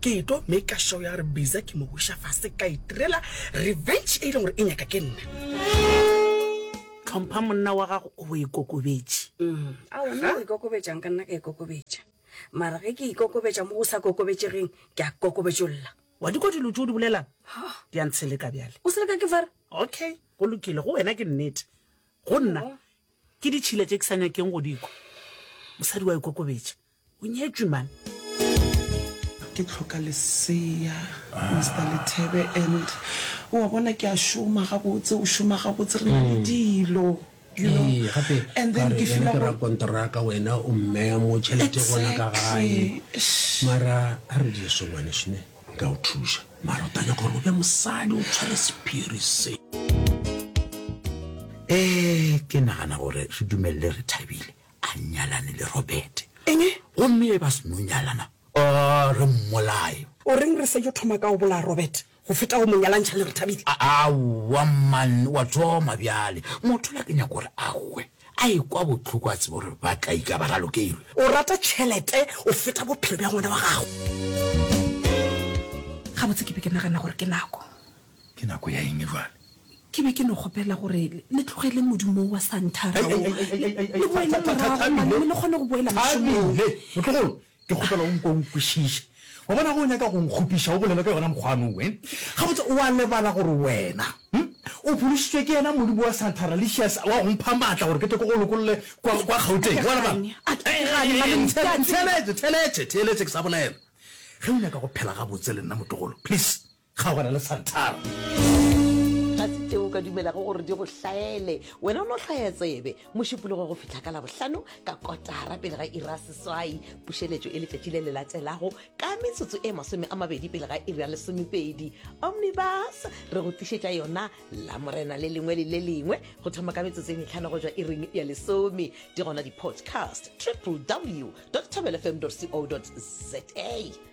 Ke etlo maker sure ya gore Biza ke mo buša fase ka itirela revenge e e leng gore e nyaka ke nna. Tlhompha monna wa gago o e kokobetše. A o na o e kokobetšang ka nna ka e kokobetša. Mara ge ke e kokobetša mo go sa kokobetšegeng ke a kokobetšolla. Wa di kwa dilo tše o di bolelang? Di a ntsheleka bjale. O seleka ke fara? Okay, go lokile. Go wena ke nnete. Go nna ke ditšhila tše ke sa nyakeng go di kwa. Mosadi wa e kokobetša. O nyetšwe man. Ke tlhoka lesea Mister Lethebe and o a bona ke a šoma gabotse o šoma gabotse re na le dilo you know Ee, gape and then ke feel gore rakonteraka wena o mmeya mo tšhelete gona ka gae Exactly. Shh. mara a re die songwane šne nka o thuša mara o tanya gore o be mosadi o tshware sephiri se um ke nagana gore re dumelele re thabile A nyalane le Robert. Eng? Gomme e ba se no nyalana. Aa, re mmolaye. O reng re sa yo thoma ka go bolaya Robert, go feta go mo nyalantšha le Rethabile? A, aowa, mman, wa thoma bjale. Motho la ke nyaka gore a hwe, a ekwa bohloko a tsebe gore ba tla ika ba ralokeilwe. O rata tšhelete go feta bophelo bja ngwana wa gago. Gabotse ke be ke nagana gore ke nako. Ke nako ya eng bjale? Ke be ke no kgopela gore le tlogele modumo wo wa Santhara wo, le boele morago mane, le kgone go boela mošomong. Thabile, motlogolo, ke kgopela o nko o nkwešiše. Wa bona, ge o nyaka go nkgopiša, o bolele ka yona mokgwa ano we. Gabotse, o a lebala gore wena o phološitšwe ke yena modimo wa Santhara Licious wa go mpha matla gore ke tle ke go lokolle kwa Gauteng? Wa lebala? Ntheeletše, theeletše, theeletše ke sa bolela. Ge o nyaka go phela gabotse le nna, motlogolo, please. Kgaogana le Santara. Ga se tšeo o ka dumelago gore di go hlaele. Wena o no hlaya tsebe mošupologo go fihla ka Labohlano ka kotara pele ga iri ya seswai. Pušeletšo e letšatši le le latelago ka metsotso e masome a mabedi pele ga iri ya lesomepedi. Omnibus re go tlišetša yona Lamorena le lengwe le le lengwe go thoma ka metsotso e mehlano go tšwa iring ya lesome. Di gona di-podcast www.thobelfm.co.za.